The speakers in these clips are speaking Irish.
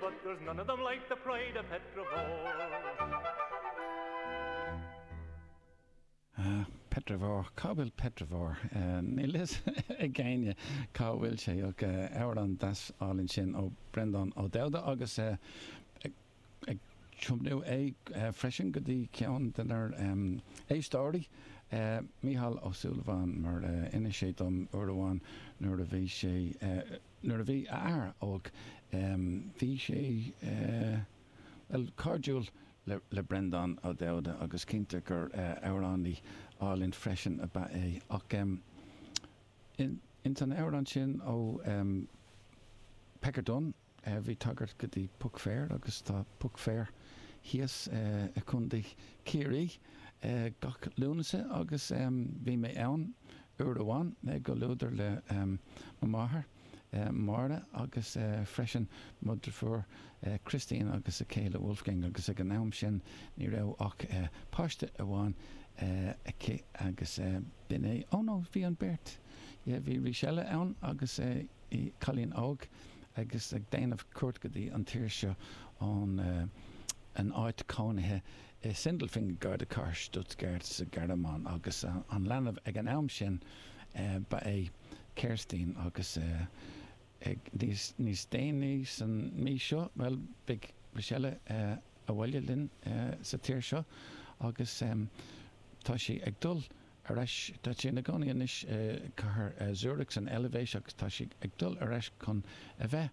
But there's none of them like the pride of Petravore. Petravore? Cá bhfuil Petravore? Níl fhios ag éinne cá bhfuil sé ach amhrán deas álainn sin ó Breandán Ó Dubhda agus ag tiomnú é freisin go dtí ceann dár n-éisteoirí, Micheál Ó Súilleabháin, mar d'inis sé dom uair amháin nuair a bhí sé Nuair a bhí a athair óg, bhí sé, bhuel, cairdiúil le Breandán Ó Dubhda agus cinnte gur amhránaí álainn freisin ab ea é. Ach ins an amhrán sin ó Pecker Dunne, bhí tagairt go dtí Puck Fair agus tá Puck Fair thíos i contae Chiarraí gach Lúnasa agus bhí mé ann. Uair amháin i gcomhluadar le mo mháthair, Máire, agus freisin mo dheirfiúr, Christine, agus a céile, Wolfgang, agus ag an am sin ní raibh ach páiste amháin aici agus b'in é, oh no, bhí an beirt, yeah, bhí Rísela ann agus í cailín óg agus ag déanamh cuairt go dtí an tír seo ón áit cónaithe. i Sindelfingen gar do chathair Stuttgart sa Ghearmáin agus an leanbh ag an am sin ba ea Kerstin agus níos déanaí san mí seo bhuel beidh Rísela abhaile linn sa tír seo agus tá sí ag dul ar ais tá sí ina gcónaí anois i cathair Zurich san Eilvéis agus tá sí ag dul ar ais chun a bheith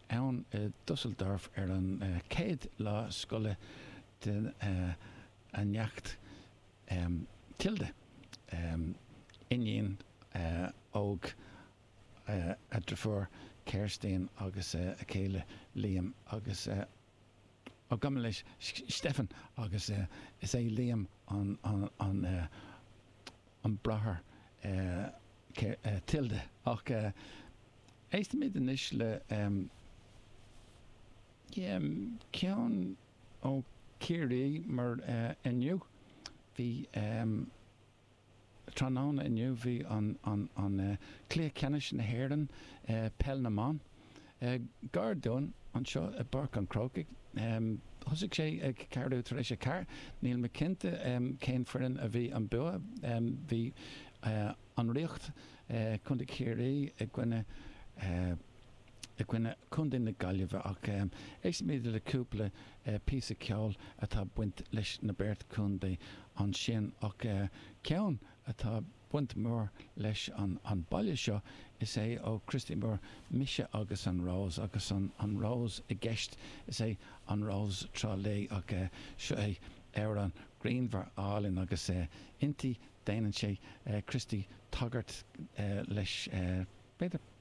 ann i Düsseldorf ar an chéad lá scoile den neacht Tilda, iníon óg a dheirfiúr Kerstin agus a céile Liam agus a. agam leis Steffan agus is é Liam an bráthair Tilda. Ach éistfimid anois le ceann ó Chiarraí mar inniu bhí. Tráthnóna inniu bhí an cluiche ceannais na hÉireann i peil na mban. Gar dúinn anseo i bPáirc an Chrócaigh. Thosaigh sé ag ceathrú tar éis a ceathair. Níl mé cinnte cén foireann a bhí an bua. Bhí an Ríocht, Contae Chiarraí i gcoinne. i gcoinne Chontae na Gaillimhe ach éistfimid le cúpla píosa ceoil atá ag baint leis na beirt contae ansin ach ceann atá ag baint go mór leis an baile seo is é ó Christy Moore 'Mise agus an Rós' agus an Rós i gceist is é An Rós Trá Lí ach seo é amhrán grianmhar álainn agus inti déanann sé Christy tagairt leis b'fhéidir.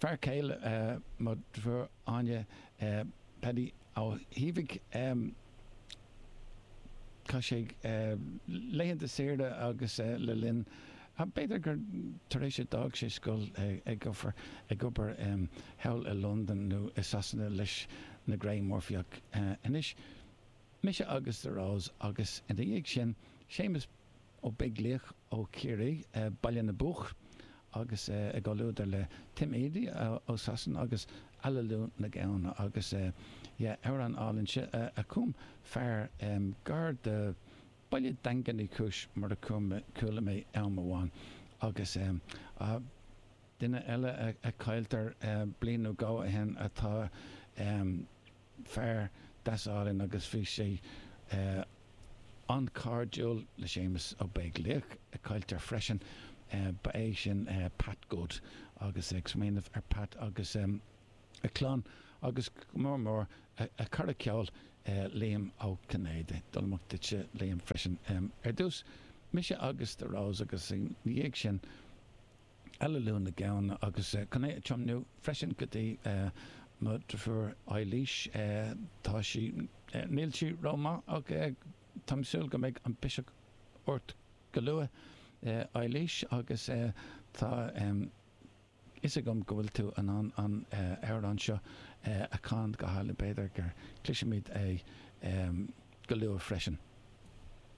fear céile mo dheirfiúr Áine, Paddy Ó hÍbhigh, chaith sé laethanta saoire agus lena linn, b'fhéidir gur tar éis a d'fhág sé scoil, ag obair thall i Londain nó i Sasana leis na Grey Murphys ach anois, mise agus The Rose agus ina dhiaidh sin Séamus Ó Beaglaoich ó Chiarraí, Baile na bPoc agus i gcomhluadar le Tim Edey ó Sasana agus Aililiú na Gamhna agus yeah amhrán álainn sin a chum fear gar do Baile Daingean Uí Chúis mar a chuala mé am amháin agus ah duine eile a cailltear bliain nó dhó ó shin atá fear deas álainn agus bhí sé an-chairdiúil le Séamus Ó Beaglaoich, a cailltear freisin. Ba é sin Pat Good agus ag smaoineamh ar Pat agus a clann agus go mór mór a cara ceoil Liam Ó Cinnéide. Dul amach duitse Liam freisin ar dtús. Mise agus The Rose agus ina dhiaidh sin. Aililiú na Gamhna agus chun é a tiomnú freisin go dtí mo dhrifiúr Eilís. Tá sí, níl sí ró-maith ach táim ag súil go mbeidh an biseach ort go luath Eilís agus tá fhios agam go bhfuil tú in ann an amhrán seo a chanadh go hálainn, b'fhéidir gur cloisfimid é go luath freisin.